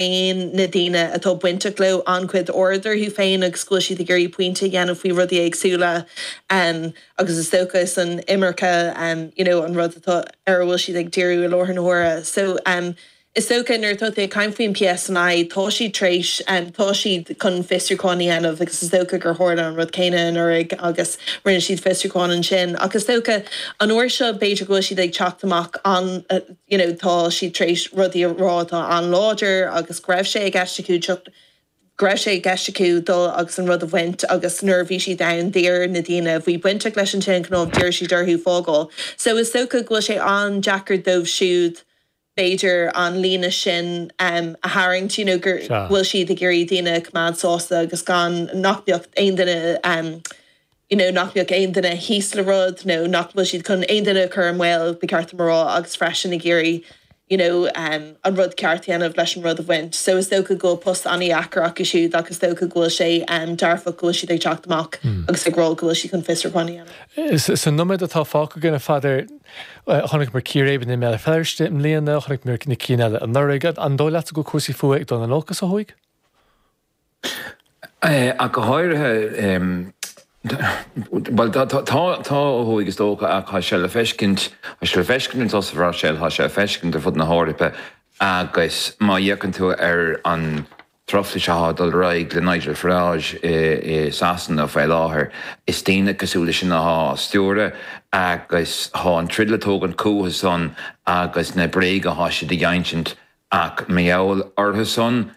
dtugann na daoine atá bainteach leo an-chuid aird orthu féin agus go bhfuil siad ag iarraidh pointe a dhéanamh faoi rudaí éagsúla agus is dócha is an imirce you know an rud atá ar a bhfuil siad ag díriú i láthair na huaire. So is dócha nuair atá tú ag caint faoin PSNI tá siad tréis tá siad chun fiosrúchán a dhéanamh agus is dócha gur tharla an rud céanna anuraidh agus rinne siad fiosrúchán ansin ach is dócha an uair seo b'fhéidir go bhfuil siad ag teacht amach you know tá siad tar éis rudaí a rá atá an-láidir agus go raibh sé i gceist acu teacht, go raibh sé i gceist acu dul agus an rud a bhaint agus nuair a bhí siad ann d'iarr na daoine a bhí bainteach leis an tine chnámh, d'iarr siad orthu fágáil. So is dócha go bhfuil sé an-deacair dóibh siúd b'fhéidir an líne sin em a tharraingt you know gur, go bhfuil siad ag iarraidh daoine a choimeád sásta agus gan, nach beadh aon duine em. nó nach mbeadh aon duine thíos le rud, nó nach bhfuil siad chun aon duine a chur i mbaol, ba cheart dom a rá, agus freisin ag iarraidh you know an rud ceart a dhéanamh leis an rud a bhaint. So is dócha go bhfuil post an-deacair acu siúd ach is dócha go bhfuil sé dearfach go bhfuil siad ag teacht amach agus ag rá go bhfuil siad chun fiosrúchán a dhéanamh. Sa nóiméad atá fágtha againn, a Pheadair, chonaic mé círéibeanna i mBéal Feirste i mbliana, chonaic mé na cinn eile anuraidh, an dóigh leatsa go bhfuil cúrsaí fuatha ag dul in olcas ó thuaidh? Ach go háirithe, bhuel, tá ó thuaidh, is dócha, ach tá sé le feiscint, tá sé le feiscint i Sasana, tá sé, tá sé le feiscint ar fud na hEorpa agus má fhéachann tú ar an truflais atá ag dul ar aghaidh le Nigel Farage i Sasana faoi láthair, is daoine cosúil leis sin atá á stiúradh agus tá an troid le tógaint chucu-san agus na bréaga atá siad ag insint ach mar gheall orthu-san,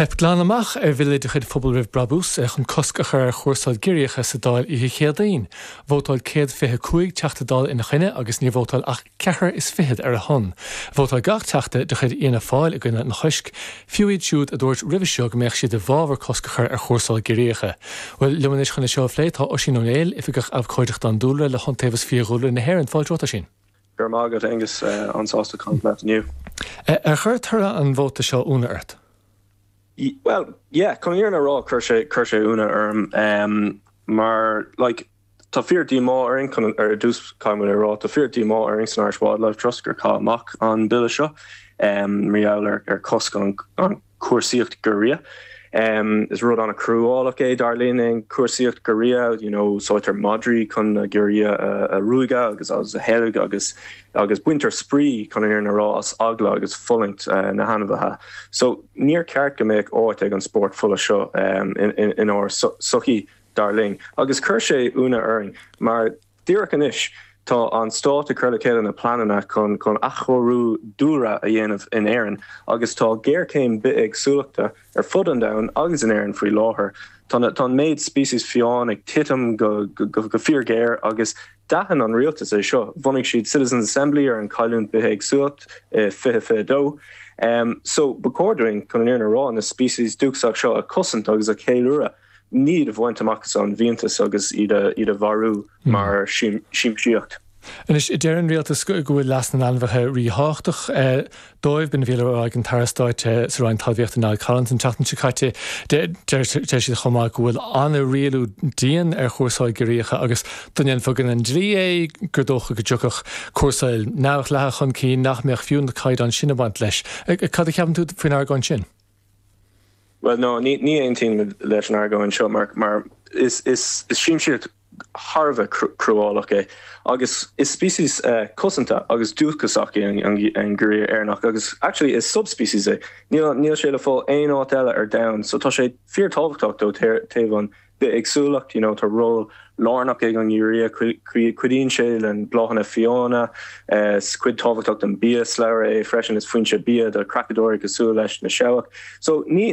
Theip glan amach ar bhille de chuid Phobal Roimh Brabús chun cosc a chur ar chúrsáil giorriacha sa Dáil oíche Chéadaoin. Vótáil céad fiche cúig Teachta Dála ina choinne agus níor vótáil ach ceathair is fiche ar a shon. Vótáil gach Teachta de chuid Fhianna Fáil i gcoinne an choisc, fiú iad siúd a dúirt roimhe seo go mbeadh siad i bhfabhar cosc a chur ar chúrsáil giorriacha. Liom anois chun é seo a phlé tá Oisín Ó Néill, Oifigeach Abhcóideachta an Dúlra le hIontaobhas Fiadhúlra na hÉireann. Fáilte romhat, Oisín. Go raibh maith agat, Aonghus. An-sásta caint leat inniu. Ar chuir toradh an vóta seo ionadh ort? Bhuel, yeah, chun an fhírinne a rá, chuir sé ionadh orm. Mar, like, tá fíor-díomá orainn, ar dtús, caithfidh muid a rá, tá fíor-díomá orainn san Irish Wildlife Trust gur caitheadh amach an bille seo mar gheall ar chosc an, cúrsaíocht giorria. Is rud an-chruálach é, dar linn, an chúrsaíocht giorria. You know, úsáidtear madraí chun na giorria a ruaigeadh agus a sheilg agus baintear spraoi, chun an fhírinne a rá, as eagla agus fulaingt na hainmhithe so. Níor cheart go mbeadh áit ag an spórt fola seo inár sochaí, dar linn, agus chuir sé ionadh orainn mar, Díreach anois, tá an stát ag cur le chéile na pleananna chun athchóiriú dúlra a dhéanamh in Éirinn agus tá géarchéim bithéagsúlachta ar fud an domhain agus in Éirinn faoi láthair. Tá an méid species fiáin ag titim go fíorghéar agus d'aithin an rialtas é seo, bhunaigh siad Citizens Assembly ar an cailliúint bithéagsúlacht i 2022. Só, ba chóir dúinn, chun an fhírinne a rá, na species dúchasach seo a chosaint agus a cheiliúradh. Ní iad a bhaint amach as an bhfiántas agus iad a mharú mar siamsaíocht. Anois, deir an rialtas go bhfuil leas na n-ainmhithe ríthábhachtach dóibh. B'in a bhí le rá ag an tAire Stáit sa Roinn Talmhaíochta Niall Collins an tseachtain seo caite. Deir siad chomh maith go bhfuil an-rialú dian ar chúrsáil giorriacha agus dá ndéanfaí in aghaidh an dlí é gur dócha go dtiocfadh cúrsáil neamhdhleathach chun cinn nach mbeadh fiú na caighdeáin sin ag baint leis. Cad a cheapann tú faoin argóint sin? Bhuel, no, ní aontaím leis an argóint seo mar, mar is siamsaíocht thar a bheith cruálach é agus is species cosanta agus dúchasach é an Giorria Éireannach agus actually is subspecies é, níl sé le fáil aon áit eile ar domhan so tá sé fíor-tábhachtach ó taobh an bithéagsúlacht. You know tá ról lárnach ag an ngiorria, cuidíonn sé le bláthanna fiáine, 's cuid tábhachtach den biashlabhra é freisin, is foinse bia do chreachadóirí cosúil leis na seabhaic. So ní.